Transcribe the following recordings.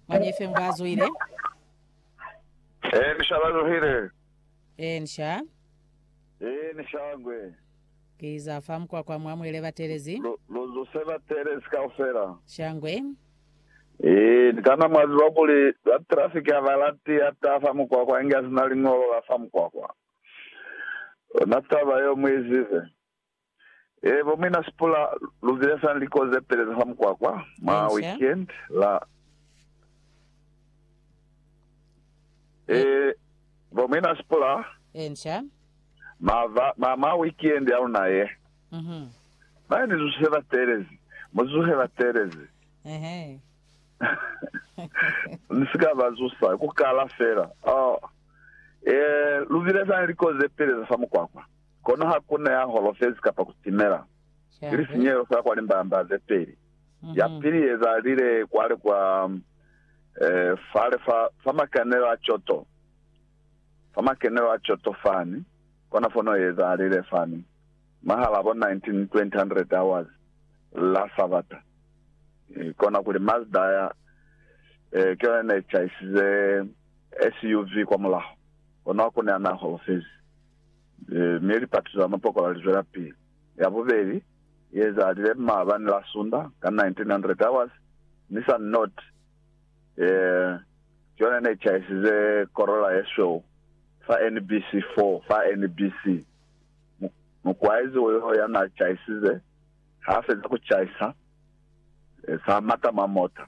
Mwañi fe ngwa zuhile? Ee, ni shala zuhile. Ee, ni sha. Ee, ni sha ngwe. Ki za fa mukwakwa mwa mwele batelezi. Lu, lu zuse batelezi kaufela. Sha ngwe. Ee, ni kana mwa ziba kuli ba traffic ha ba lati ya ta fa mukwakwa inge a si na liñolo la fa mukwakwa. Lona taba yeo mu i zibe. Eebo mina sipula lubile sa liko ze peleza fa mukwakwa mwa weekend la Eebo mina sipula mava ma mwa weekend ya luna ye. Bana ni zuhe ba teelezi, mu zuhe ba teelezi. Ni si ka ba zusa, ku kala fela. Oh, ee, lubile sa liko ze peleza fa mukwakwa. Kono ha ku na ya holofezi kapa ku timela, ki lisinyehelo fela kwa limbamba ze peli. Ya pili ye ezalile kwale kwa fale fa, fa makenelo a coto, fa makenelo a coto fani, kona fono ye ezalile fani, mwahal'a bo 1920 hours, la Sabata. Kona kuli Mazda ya, eh, ki yona ne caisize SUV kwa mulaho, kono ha ku na ya na holofezi. mi lipatuto za mapokola lizwelapili. Ya bubeli i ezalile maabani la Sunda ka 1900 hours, mi sa Nott ki yona ne chaisize Corolla yesweu fa NBC 4 fa NBC. Mukwaizi wo yo ya na chaisize ha feza ku chaisa, sa mata mwa mota.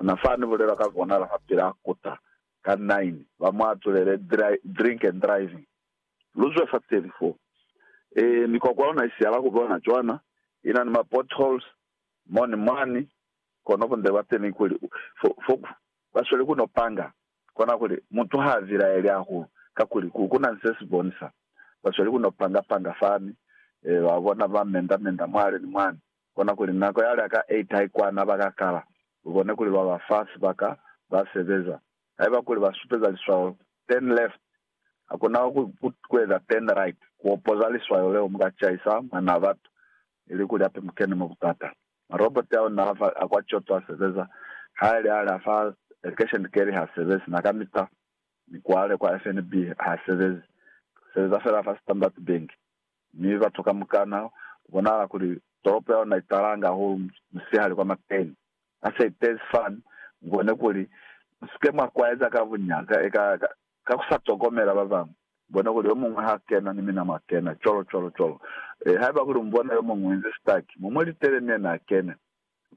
Ona fa ni bulela ka kona la fa pila kota ka nine ba mu atulele drink and driving. Lu zwe fa teli fo. Ee, mikwakwa ona i sihala ku bona cwana, i na ni ma potholes mo ni mwani, kono bunde bwa teni kuli fo ba sweli ku no panga kona kuli mutu ha vilaeli hahulu kakuli ku na ni se si bonisa ba sweli ku no panga panga fani, ba bona ba menda menda mwale ni mwani. Kona kuli nako ya lya ka 8 haikwana ba ka kala, lu kone kuli lwa ba fa sibaka ba sebeza. Haiba kuli ba supeza liswayo turn left, hakuna ku eza turn right ku opoza liswayo leo, mu ka caisa Mwanaa Batu, ili kuli hape mu kene mwa butata. Maroboti ao n'a fa a kwa Kyoto a sebeza, ha li a lya fa Education Kerry ha sebezi, n'a ka mita ni kwale kwa FNB ha sebezi, lu sebeza fela fa Standard Bank. mi batu kamukana kubonahala kuli tolopo ya luna italanga hahulu musihali kwa mateni. Ha se itezi fani, mubone kuli musike mwa kwaeza ka buñata eka ka kusa tokomela babañwi. Mubone kuli yomuñwi ha kena ni mina mwa kena, cwalo cwalo cwalo. Haiba kuli mubona yomuñwi uinzi sitaki, mu mu litele ni yena akene.